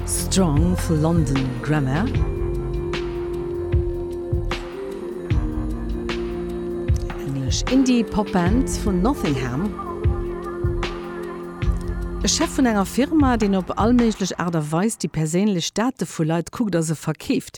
Strong vu London Grammar. Englesch Indie-Pop-Band vun Nottingham. E Chef vun enger Firma, deen op all méiglech Aart a Weis déi perséinlech Date vu Leit kuckt a se verkeeft.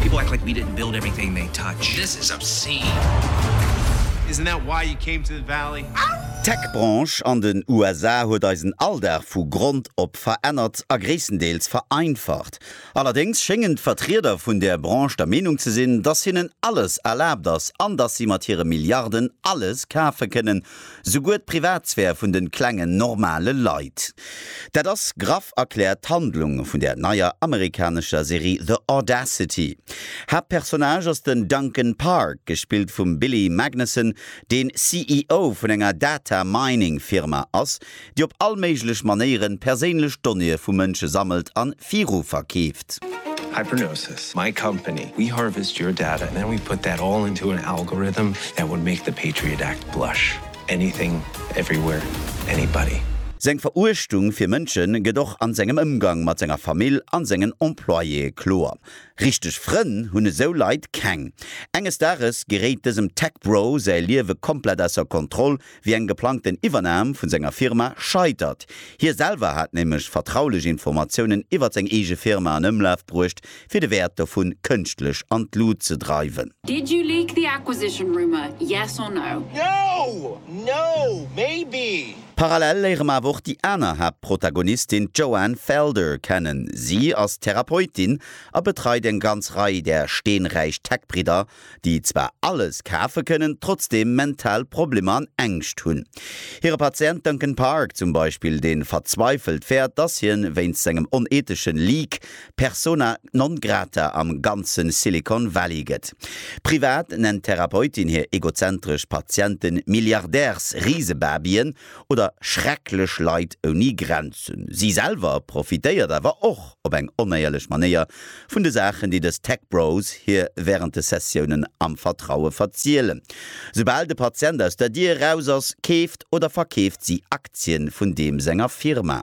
People act like we didn't build everything they touch. This is obscene. Isn't that why you came to the valley? Ahh! D'Tech-Branche an den USA huet eisen Alldag vu Grond op verännert a gréisstendeels vereinfacht. Allerdéngs schéngen d'Vertrieder vun där Branche der Meenung ze sinn, dass hinnen alles erlaabt ass an dass si mat hire Milliarden alles kafe kënnen, Souguer d'Privatsphär vun de klengen, normale Leit. Dat ass graff erkläert d'Handlung vun der neier amerikanescher Serie The Audacity. Haaptpersonnage ass den Duncan Park, gespillt vum Billy Magnussen, deen CEO vun enger Data-Mining-Firma ass, déi op all méiglech Manéieren perséinlech Donnéeë vu Mënsche sammelt an viru verkeeft. Hypernosis, my company, we harvest your data and then we put that all into an algorithm that would make the Patriot Act blush. Anything, everywhere, anybody. Seng Veruechtung fir Mënsche gëtt och an sengem Ëmgang mat senger Famill an sengen Employéë kloer. Richteg Frënn hunn esou Leit keng. Enges Dages geréit dësem Tech-Bro säi Liewe komplett ausser Kontroll, wéi eng geplangten Iwwernam vun senger Firma scheitert. Hie selwer hat nämlech vertraulech Informatiounen iwwert seng eege Firma an Ëmlaf bruecht, fir de Wäert dovun kënschtlech an d'Lut ze dreiwen. Did you leak the acquisition rumour, yes or no? No! No! Maybe! Parallel léiere mer awer och déi aner Haaptprotagonistin, d'Joanne Felder, kennen. Si ass Therapeutin a betreit eng ganz Rei där steenräich Tech-Bridder déi zwar alles kafe kënnen, trotzdeem mental Problemer an Ängscht hunn. Hire Patient Duncan Park zum Beispill, dee verzweifelt fäert, dass hien wéinst sengem oneethesche Leak persona non grata am ganze Silicon Valley gëtt. Privat nennt d'Therapeutin hir egozentresch Patiente Milliardärs-Risebabyen oder schrecklech Leit ouni Grenzen. Si selwer profitéiert awer och op eng onéierlech Manéier Vun de Saachen, déi dës Tech Bros hir wärend de Sessiounen am Vertraue verzielen. Soubal de Patient aus der Dier eraus ass, keeft oder verkeeft si Aktien vun deem senger Firma.